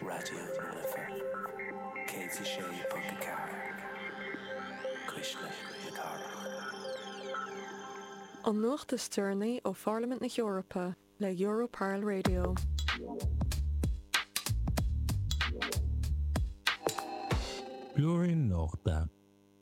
Raidió na Life 106.4, cuisle na cathrach. An nuacht is deireanaí ó Pharlaimint na hEorpa le Europarl Radio. Blúirín Nuachta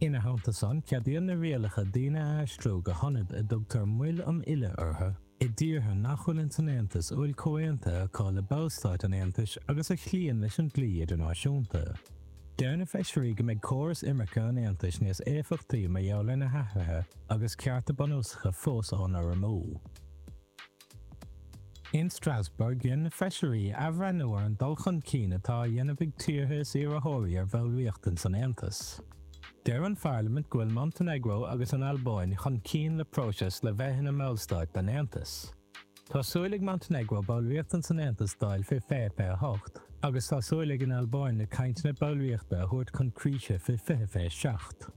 Ina theannta san, ceadaíonn na rialacha daoine a aistriú go hionaid a dtugtar moil um fhilleadh orthu, i dtíortha nach bhfuil ins an Aontas a bhfuil comhaontuithe acu le Ballstáit an Aontais agus a chloíonn leis an dlí idirnáisiúnta. Deir na Feisirí go mbeidh córas imirce an Aontais níos éifeachtaí mar gheall ar na hathruithe agus cearta bunúsacha fós á n-urramú. In Strasbourg, dhein na Feisirí athbhreithniú ar an dul chun cinn atá á dhéanamh ag tíortha is iarrthóirí ar bhallraíocht ins an Aontas. Deir an Pharlaimint go bhfuil Montainéagró agus an Albáin chun cinn sa phróiseas le bheith ina mBallstáit den Aontas. Tá súil ag Montainéagró ballraíocht ins an Aontas a fháil fé fiche fiche 8, agus tá súil ag an Albáin na cainteanna ballraíochta a thabhairt chun críche fé fiche fiche 7.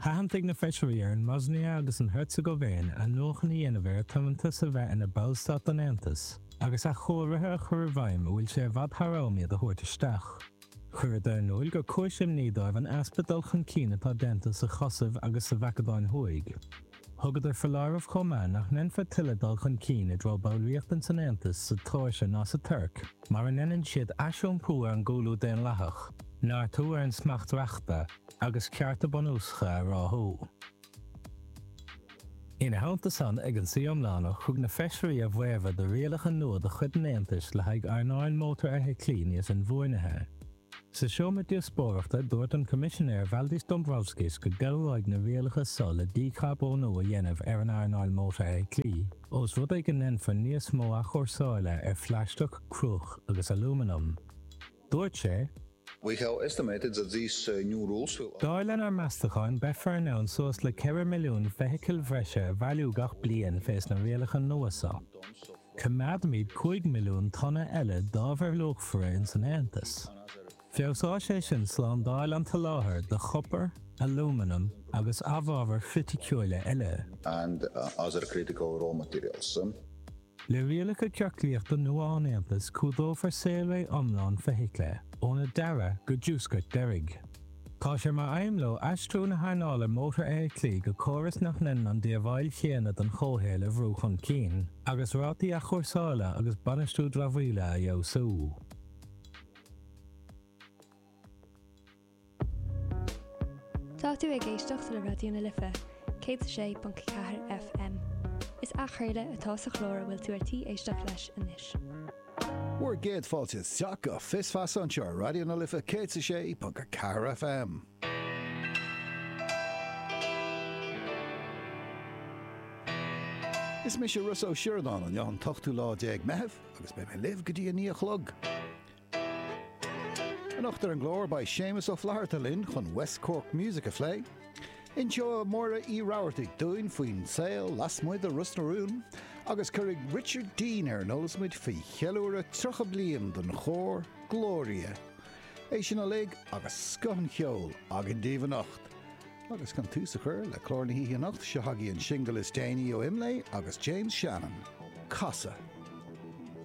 Thathantaigh na feisirí ar an mBoisnia agus an Heirseagaivéin athnuachan a dhéanamh ar a tiomantas a bheith ina ballstát den Aontas agus athchóirithe a chur i bhfeidhm a bhfuil sé i bhfad thar am iad a thabhairt isteach. Chuireadar in iúl gur cúis imní dóibh an easpa dul chun cinn atá déanta sa Chosaiv agus sa Mhacadóin Thuaidh. Thugadar foláireamh chomh maith nach ndéanfar tuilleadh dul chun cinn i dtreo ballraíocht ins an Aontas sa tSeoirsia ná sa Tuirc mura ndéanann siad aisiompú ar an gcúlú daonlathach, neartú ar an smacht reachta, agus cearta bunúsacha a ráthú. Ina theannta san, ag an suí iomlánach, thug na Feisirí a bhfaomhadh do rialacha nua de chuid an Aontais le haghaidh earnáil mótarfheithiclí níos inbhuanaithe. Sa seomra díospóireachta, dúirt an Coimisinéir Valdis Dombrovskis go gcabhróidh na rialacha so le dícharbónú a dhéanamh ar an earnáil mótarfheithiclí, ós rud é go ndéanfar níos mó athchúrsáile ar phlaisteach, cruach agus alúmanam. Dúirt sé. We have estimated that these new rules will allow. Dar lenár meastacháin, beifear in ann suas le 4 milliún feithicil bhreise a bhailiú gach bliain fés na rialacha nua seo. Coimeádfaimid 5 milliún tonna eile d'ábhair luachmhara ins an Aontas. Feabhsóidh sé sin slándáil an tsoláthair do chopar, alúmanam agus amhábhair chriticiúila eile. and other critical raw materials. Le rialacha ciorclaíochta nua an Aontais cumhdófar saolré iomlán feithicle, óna dearadh go dtí a diúscairt deiridh. Tá sé mar aidhm leo aistriú na hearnála mótarfheithiclí go córas nach ndéanann an díobháil chéanna don chomhshaol a bhrú chun cinn, agus rátaí athchúrsála agus bainistiú dramhaíola a fheabhsú. Tá tú ag éisteacht le Raidió na Life, 106.4 FM. Is athchraoladh atá sa chlár a bhfuil tú ar tí éisteacht leis anois. Bhur gcéad fáilte isteach go Fios Feasa anseo ar Raidió na Life 106.4 FM. Is mise Rossa Ó Sioradáin an t-ochtú lá déag Meitheamh agus beidh mé libh go dtí a naoi a chlog. Anocht ar an gclár beidh Séamus Ó Flatharta linn chun West Cork Music a phlé. Inseoidh Máire Ní Rabhartaigh dúinn faoin saol lasmuigh de Ros na Rún agus cuirfidh Richard Dean ar an eolas muid faoi cheiliúradh 30 bliain don chór Glória. É sin uilig agus scoth an cheoil againn daoibh anocht. Agus chun tús a chur le clár na hoíche anocht, seo agaibh an singil is déanaí ó Imlé agus James Shannon, Casadh.